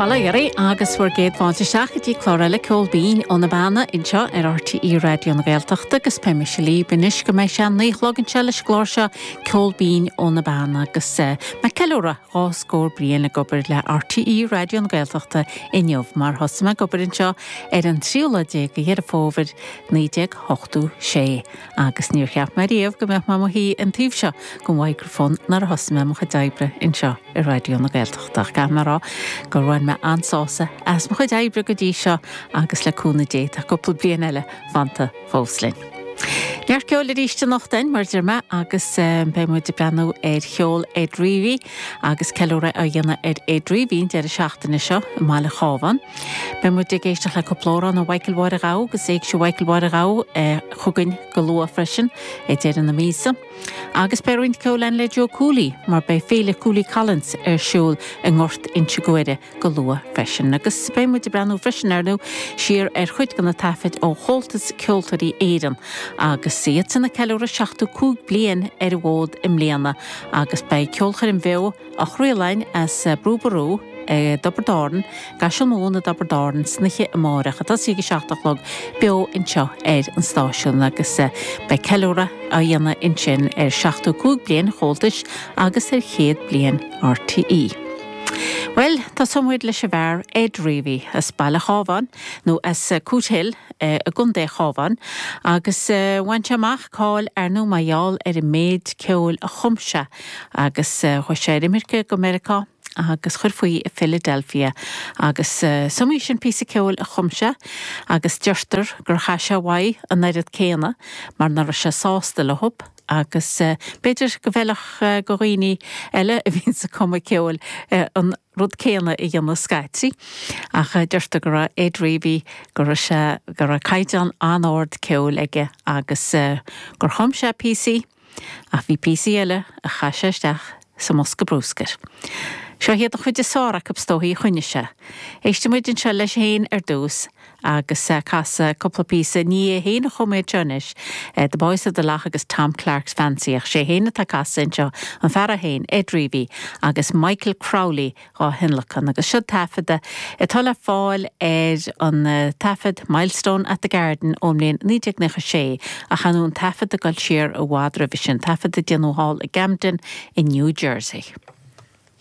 Bail ó Dhia oraibh agus bhur gcéad fáilte isteach go dtí clár eile Ceol Binn ó na Beanna anseo ar RTÉ Raidió na Gaeltachta agus beidh mise libh anois go mbeidh sé a naoi a chlog anseo leis an gclár seo Ceol Binn ó na Beanna agus mé ag ceiliúradh dhá scór bliain ag obair le RTÉ Raidió na Gaeltachta inniu mar thosaigh mé ag obair anseo ar an tríú lá déag de Dheireadh Fómhair naoi déag ochtó sé. Agus níor cheap mé ariamh go mbeadh mé i mo shuí ar an taobh seo den mhicreafón nuair a thosaigh mé ar mo chuid oibre anseo i Raidió na Gaeltachta. Ach caithfidh mé a rá gur bhain mé an-sásamh as mo chuid oibre go dtí seo agus le cúnamh Dé tá cúpla bliain eile fanta fós linn. Neart ceoil aríst anocht againn mar a deir mé agus beidh muid ag breathnú ar cheol Ed Reavy, Agus ceiliúradh á dhéanamh ar Ed Reavy an deireadh seachtaine seo i mbaile an Chábháin, beidh muid ag éisteacht le cúpla amhrán ó Mhichael Mháire an Ghabha agus Éigse Mhichael Mháire an Ghabha chugainn go luath freisin ag deireadh na míosa. Agus beidh roinnt ceoil againn le Joe Cooley, mar beidh Féile Cooley Collins ar siúl i nGort Inse Guaire go luath freisin. Agus beidh muid ag breathnú freisin ar nó siar ar chuid de na taifeadtaí ó Chomhaltas Ceoltóirí Éireann agus iadsan ag ceiliúradh 75 bliain ar an bhfód i mbliana agus beidh ceolchoirm bheo á craoladh as Brú Ború i dTiobraid Árann, i gCaiseal Mumhan i dTiobraid Árann, san oíche amárach, ag tosaí ag 7 a chlog, beo anseo ar an stáisiún agus beidh ceiliúradh á dhéanamh ansin ar 75 bliain an Chomhaltais agus ar chéad bliain RTÉ. Bhuel, tosóidh muid leis an bhfear Ed Reavy as baile an Chábháin, nó as Cootehill i gContae an Chábháin, agus bhain sé amach cáil air féin mar gheall ar an méid ceoil a chum sé agus chuaigh sé ar imirce go Meiriceá agus chuir faoi i Philadelphia agus is iomaí sin píosa ceoil a chum sé agus deirtear gur chaith sé uaidh an oiread céanna mar nach raibh sé sásta leob Agus b'fhéidir go bhfeilfeadh go dhaoine eile a bhíonns ag cumadh ceoil an rud céanna a dhéanamh scaití. Ach deirtear go raibh Ed Reavy, go raibh sé, go raibh caighdeán an-ard ceoil aige agus gur chum sé píosaí ach bhí píosaí eile a chaith sé isteach sa mbosca brúscair. Seo iad an chuid is fearr acu is dóigh, a choinnigh sé. Éistfidh muid anseo leis féin ar dtús, agus é ag casadh cúpla píosa ní hé féin a chum iad seo anois, The Boys of the Lough agus Tom Clarke's Fancy, ach is é féin atá ag casadh anseo, an fear é féin, Ed Reavy, agus Michael Crowley dhá thionlacan, agus seo taifead atá le fáil ar an taifead Milestone at the Garden ón mbliain 1996, ach téann an taifead ag dul siar i bhfad roimhe sin, taifead a déanadh thall i gCamden i New Jersey.